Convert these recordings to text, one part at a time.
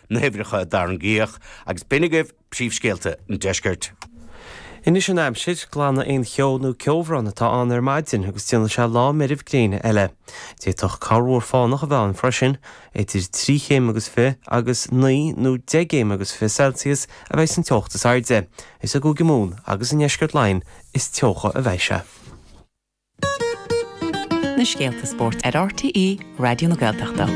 na huimhreacha a tarraingíodh, agus b'in agaibh príomhscéalta an deiscirt. Anois an aimsir, glanfaidh aon cheo nó ceobhrán atá ann ar maidin agus déanfaidh sé lá meirbh gréine eile. D'fhéadfadh corrmhúr fánach a bheith ann freisin. Idir trí chéim agus fiche agus naoi nó deich gcéim agus fiche Celsius a bheidh san teocht is airde. Is i gCúige Mumhan agus i ndeisceart Laighean is teocha a bheidh sé. na scéalta spóirt ar RTÉ Raidió na Gaeltachta.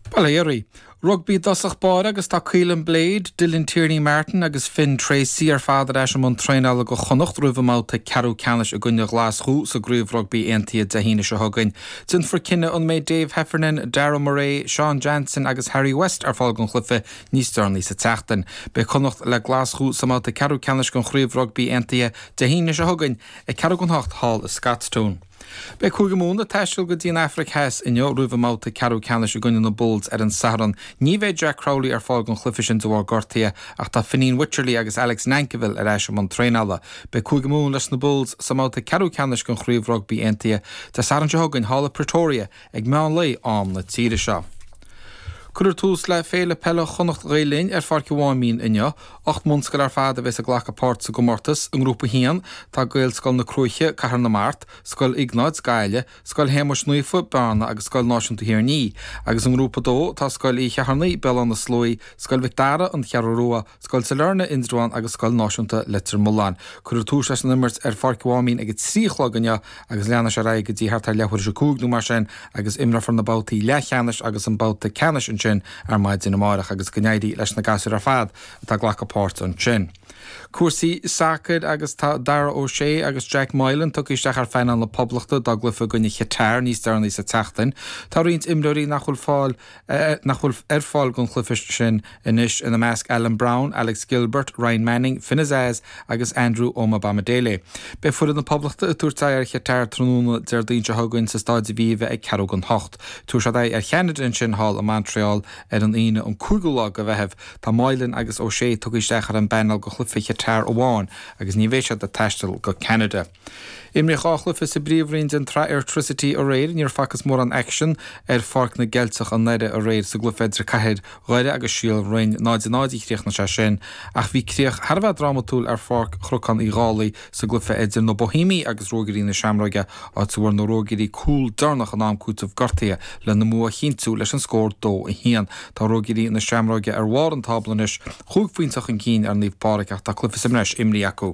Bail ó Dhia oraibh. Rugbaí i dtosach báire agus tá Caolin Blade, Dylan Tierney Martin agus Finn Treacy ar fad ar ais i mbun traenála do Chonnacht roimh a mbabhta ceathrú ceannais i gcoinne Ghlaschú sa gCraobh Rugbaí Aontaithe Dé hAoine seo chugainn. Déanfar cinneadh an mbeidh Dave Heffernan, Darragh Murray, Sean Jansen agus Harry West ar fáil don chluiche níos deireanaí sa tseachtain. Beidh Connacht le Glaschú sa mbabhta ceathrú ceannais den Chraobh Rugbaí Aontaithe Dé hAoine seo chugainn ag ceathrú don hocht thall i Scotstoun. Beidh Cúige Mumhan ag taisteal go dtí an Afraic Theas inniu roimh a mbabhta ceathrú ceannais i gcoinne na Bulls ar an Satharn. Ní bheidh Jack Crowley ar fáil don chluiche sin de bharr gortaithe ach tá Fineen Wycherley agus Alex Nankivell ar ais i mbun traenála. Beidh Cúige Mumhan leis na Bulls sa mbabhta ceathrú ceannais den Chraobh Rugbaí Aontaithe Dé Sathairn seo chugainn thall i Pretoria ag meán lae am na tíre seo. Cuireadh tús le Féile Peile Chonnacht Ghael Linn ar Pháirc an Mháimín inniu. Ocht mbunscoil ar fad a bheas ag glacadh páirt sa gcomórtas. I nGrúpa 1, tá Gaelscoil na Cruaiche, Cathair na Mart, Scoil Iognáid, Gaillimh, Scoil Shéamais Naofa, Bearna agus Scoil Náisiúnta Thír an Fhia, agus i nGrúpa 2, tá Scoil Uí Cheithearnaigh, Béal Átha na Sluaí, Scoil Mhic Dara, An Cheathrú Rua, Scoil Sailearna, Indreabhán agus Scoil Náisiúnta Leitir Mealláin. Cuireadh tús leis an imirt ar Pháirc an Mháimín ag a trí a chlog inniu agus leanfaidh sé ar aghaidh go dtí thart ar leathuair tar éis a cúig nó mar sin agus imreofar na babhtaí leathcheannais agus an babhta ceannais ansin ar maidin amáireach agus go n-éirí leis na gasúir ar fad atá ag glacadh páirt ansin. Cúrsaí sacair agus tá Dara O'Shea agus Jack Moylan tugtha isteach ar phainéal na Poblachta dá gcluiche i gcoinne Qatar níos deireanaí sa tseachtain. Tá roinnt imreoirí nach bhfuil fáil nach bhfuil ar fáil don chluiche sin anois, ina measc Alan Browne, Alex Gilbert, Ryan Manning, Finn Azaz agus Andrew Omobamidele. Beidh foireann na Poblachta ag tabhairt aghaidh ar Chatar tráthnóna Déardaoin seo chugainn sa Staid Aviva ag ceathrú don hocht. Tabharfaidh siad aghaidh ar Cheanada ansin thall i Montreal ar an Aoine an cúigiú lá de Mheitheamh. Tá Moylan agus O'Shea tugtha isteach ar an bpainéal do chluiche Chatar amháin agus ní bheidh siad ag taisteal go Ceanada. Imríodh dhá chluiche sa bPríomhroinn den tsraith Airtricity aréir. Níor facthas mórán aicsin ar Pháirc na gCeilteach i nDoire aréir. Sa gcluiche idir Cathair Dhoire agus Síol Bhroin, 0 0 a chríochnaigh sé sin, ach bhí críoch thar a bheith drámatúil ar Pháirc Chnocán Uí Dhálaigh sa gcluiche idir na Boihéamaigh agus Ruagairí na Seamróige, áit a bhfuair na Ruagairí cúl deireanach in am cúitimh gortaithe lena mbua a chinntiú leis an scór 2 1. Tá Ruagairí na Seamróige ar bharr an tábla anois, chúig phointe chun cinn ar Naomh Pádraig, ach tá cluiche sa mbreis imrithe acu.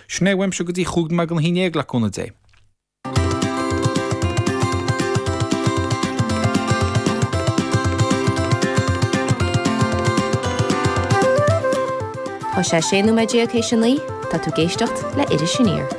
Sin é a bhfuil uaimse go dtí chúig nóiméad don haon déag le cúnamh Dé. Tá sé sé nóiméad déag théis a naoi, tá tú ag éisteacht le Iris Aniar.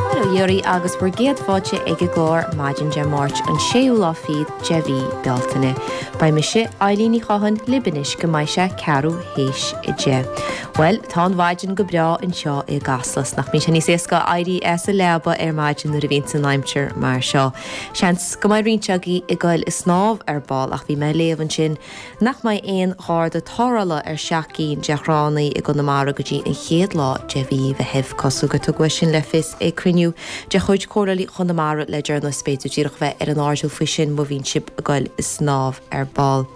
Mora dhaoibh agus bhur gcéad fáilte ag an gclár maidin Dé Máirt an séú lá fichead, de mhí Bealtaine. Beidh mise, Eilín Ní Chatháin, libh anois go mbeidh sé ceathrú théis a deich. Bhuel, tá an mhaidin go breá anseo i gCasla, 's nach mbíonn sé níos éasca éirí as an leaba ar maidin nuair a bhíonns an aimsir mar seo. Seans go mbeidh roinnt agaibh ag goil ag snámh ar ball, ach bhí mé ag léamh ansin, nach mbeidh aon Gharda tarrthála ar sheacht gcinn de thránna i gConamara go dtí an chéad lá de mhí Mheithimh, cosúil gur tugadh é sin le fios ag cruinniú de chuid Chomhairle Chonamara le deireanas. B'fhéidir díreach bheith ar an airdeall faoi sin má bhíonn sibh ag goil ag snámh ar ball.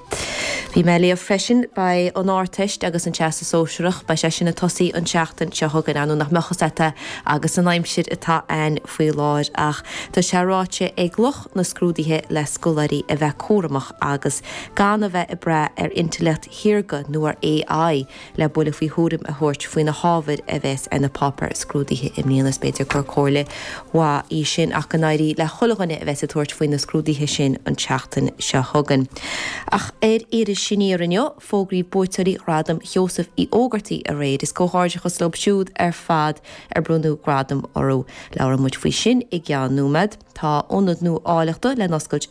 Bhí mé ag léamh freisin, beidh an Ardteist agus an Teastas Sóisearach, beidh sé sin ag tosaí an tseachtain seo chugainn, ar ndóigh nach mbeadh a fhios agat é agus an aimsir atá ann. faoi láthair ach tá sé ráite ag lucht na scrúduithe le scoláirí a bheith cúramach agus gan a bheith ag brath ar intleacht shaorga nó ar AI le buille faoi thuairim a thabhairt faoi na hábhair a bheas ar na páipéir scrúdaithe i mbliana. Is b'fhéidir gur comhairle mhaith í sin ach go n-éirí le chuile dhuine a bheas ag tabhairt faoi na scrúduithe sin an tseachtain seo chugainn. Ach ar Iris Aniar inniu, fógraíodh buaiteoirí Ghradam Sheosaimh Uí Ógartaigh aréir. Is comhghairdeachas leo siúd ar fad. ar bronnadh gradaim orthu. Labhróidh muid faoi sin i gceann nóiméad. Tá ionad nua áilleachta le n-oscailt i.